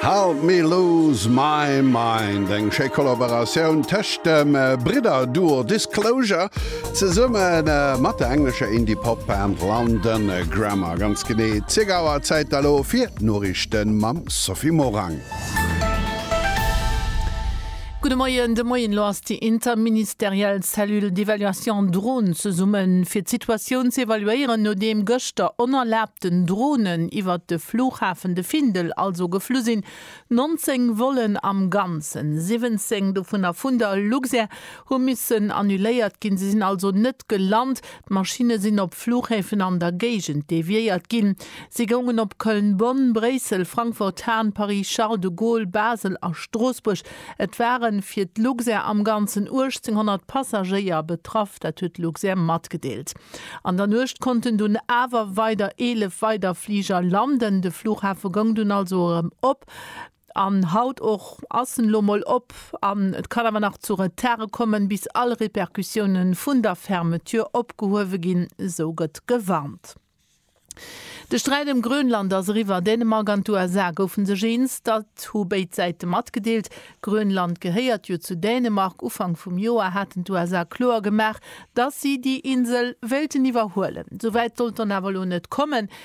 Help me lose my mind, eng schéi Kollaboratioun tëscht dem Bridder-Duo Disclosure zesumme mat der englescher Indie-Pop-Band London Grammar. Ganz genee 10 Auer, Zäit elo fir d'Noriichten mam Sophie Morang. Gudde Moien, de Moien, elo ass déi interministeriell Cellule d'évaluation drones zesummen, fir d'Situatioun ze evaluéieren, nodeem gëschter onerlaabten Dronen iwwert de Flughafen de Findel also geflu sinn. 19 Vollen am Ganzen, 17 dovunner vun der Luxair, hu missen annuléiert ginn, se sinn also net gelant. D'Maschinne sinn op Fluchhäfen an der Géigend deviéiert ginn. Si goungen op Köln, Bonn, Bréissel, Frankfurt, Hahn, Paris, Charles de Gaulle, Basel a Stroossbuerg. Et ware fir d'Luxair am Ganzen 1.800 Passagéier betraff, dat huet d'Luxair matgedeelt. An der Nuecht konnten dunn awer weider 11 weider Fliger landen. De Fluchhafe goung dunn also erëm op. An haut och ass en elo mol op, an et kann awer nach zu Retarde kommen, bis all Repercussioune vun der Fermeture opgehuewe ginn, esou gëtt gewarnt. De Sträit ëm Grönland ass eriwwer. Dänemark an d'USA goufe sech eens, dat hu béid Säite matgedeelt. Grönland gehéiert jo zu Dänemark. Ufank vum Joer haten d'USA kloer gemaach, datt si déi Insel wéilten iwwerhuelen. Esou wäit sollt dann awer elo net kommen.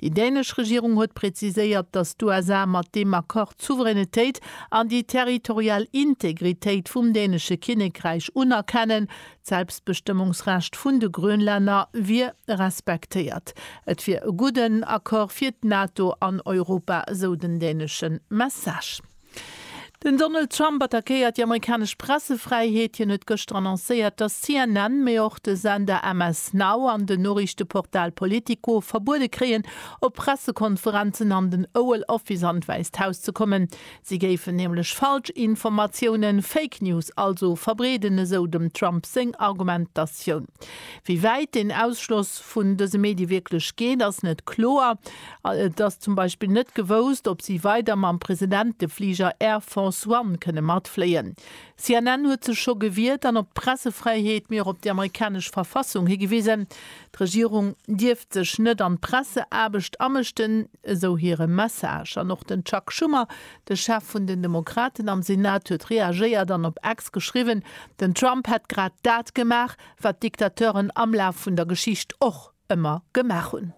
Déi dänesch Regierung huet präziséiert, datt d'USA mat deem Accord d'Souveränitéit an déi territorial Integritéit vum dänesche Kinnekräich unerkennen. D'Selbstbestëmmungsrecht vun de Grönlänner wier respektéiert. Et wier e gudden Accord fir d'NATO an Europa, esou den dänesche Message. Den Donald Trump attackéiert déi amerikanesch Pressefräiheet. Hien huet gëschter annoncéiert, datt CNN, mee och de Sender MS Now an den Noriichteportal Politico verbuede kréien, op Pressekonferenzen an den Oval Office an d'Wäisst Haus ze kommen. Si géifen nämlech Falschinformatiounen, Fake News also, verbreeden, esou dem Trump seng Argumentatioun. Wéi wäit deen Ausschloss vun dëse Medie wierklech geet, ass net kloer. Et ass zum Beispill net gewousst, ob si weider mam Presidentefliger Air Force One kënne matfléien. CNN huet sech scho gewiert an op d'Pressefräiheet, mee och op déi amerikanesch Verfassung higewisen. D'Regierung dierft sech net an d'Presseaarbecht amëschten, esou hire Message. An och den Chuck Schumer, de Chef vun den Demokraten am Senat, huet reagéiert an op X geschriwwen, den Trump hätt grad dat gemaach, wat Diktateuren am Laf vun der Geschicht och ëmmer gemaach hunn.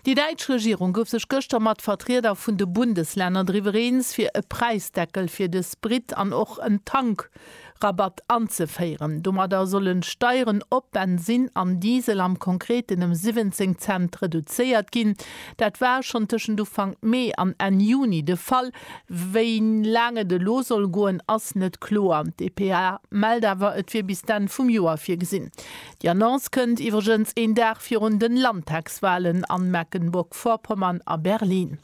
Déi däitsch Regierung gouf sech gëschter mat Vertrieder vun de Bundeslänner driwwer eens, fir e Präisdeckel fir de Sprit an och en Tankrabatt anzeféieren. Domadder sollen d'Steieren op Bensinn an Diesel am Konkreten ëm 17 Cent reduzéiert ginn. Dat war schonn tëschent Ufank Mee an Enn Juni de Fall. Wéi laang et elo soll goen, ass net kloer. D'EPA mellt awer, et wier bis d'Enn vum Joer virgesinn. Déi Annonce kënnt iwwregens een Dag virun den Landtagswahlen an Mecklenburg-Vorpommern a Berlin.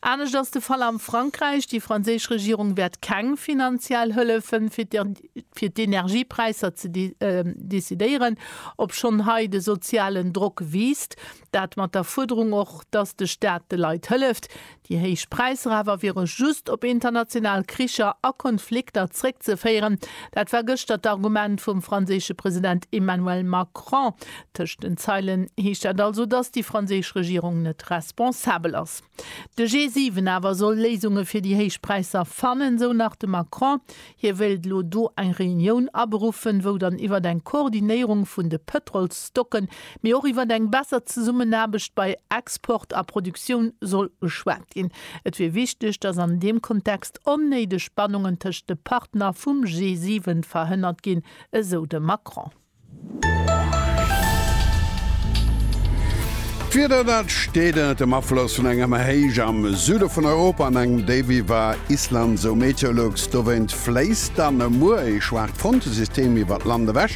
Anescht ass de Fall am Frankräich. Déi franséisch Regierung wäert keng finanziell Hëllefen fir d'Energiepräisser decidéieren, obschonn hei de sozialen Drock wiisst. Dat mat der Fuerderung och, datt de Staat de Leit hëlleft. Déi héich Präisser awer wiere just op international Kricher a Konflikter zréckzeféieren. Dat war gëschter d'Argument vum franséische President Emmanuel Macron. Tëscht den Zeilen heescht dat also, datt déi franséisch Regierung net responsabel ass. De G7 awer soll Léisunge fir déi héich Präisser fannen, sou nach de Macron. Hie wéilt elo do eng Reunioun aberuffen, wou dann iwwert eng Koordinéierung vun de Pëtrolsstocken, mee och iwwert eng besser Zesummenaarbecht bei Export a Produktioun soll geschwat ginn. Et wier wichteg, datt an deem Kontext onnéideg Spannungen tëscht de Partner vum G7 verhënnert ginn, esou de Macron. D'Wieder, dat steet ënnert dem Afloss vun enger Héich am Süde vun Europa an engem Déif iwwer Island, esou Meteolux. Dowéint fléisst dann e Muer ee schwaacht Frontesystem iwwer d'Land ewech.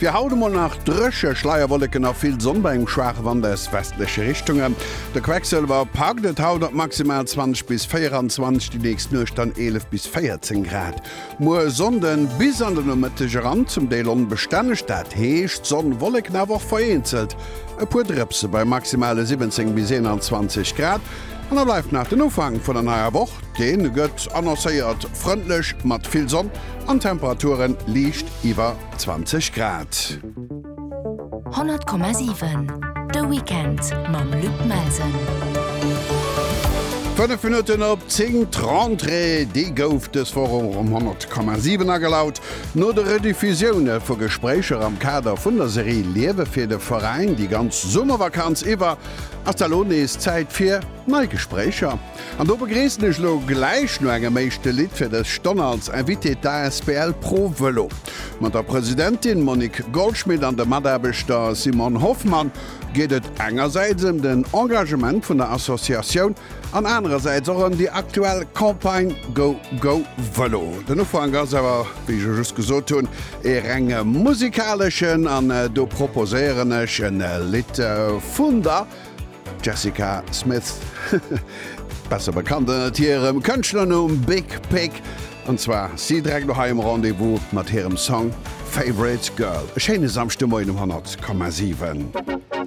Fir haut emol nach dréche, Schleierwolleken a vill Sonn bei engem schwaache Wand aus westleche Richtungen. De Quecksëlwer packt et haut op maximal 20 bis 24, déi nächst Nuecht dann 11 bis 14 Grad. Muer Sonnden bis an de Nomëtteg eran zum Deel onbestänneg, dat heescht Sonn, Wolleken, awer och vereenzelt e puer Drëpse bei maximale 17 bis 21 Grad. An da bleift nach den Ufank vun der neier Woch, dee gëtt annoncéiert frëndlech mat vill Sonn an Temperaturen liicht iwwer 20 Grad. 100,7 De Weekend mam Luc Melsen. 5 Minutten op 10, d'Rentrée, déi gouf dës Woch och um 100,7 agelaut. No de Rediffusioune vu Gespréicher am Kader vun der Serie Liewe fir de Veräin déi ganz Summervakanz iwwer, ass da lo nees Zäit fir nei Gespréicher. An do begréissen ech elo gläich no engem éischte Lidd fir dës Stonn als Invité d'asbl Pro Vëlo. Mat der Presidentin Monique Goldschmit an dem Mataarbechter Simon Hoffmann geet et engersäits ëm den Engagement vun der Associatioun an anerersäits och ëm déi aktuell Campagne Go Go Vëlo. Den Ufank ass awer, wéi ech just gesot hunn, ee reng musikaleschen an do proposéieren ech e Lidd vun der. D'Jessica Smith, besser bekannt ënnert hirem Kënschtlernumm Big Pic, an zwar ass si direkt no hei um Rendez-vous mat hirem Song Favorite Girl. E schéine Samschdemoien um 100,7.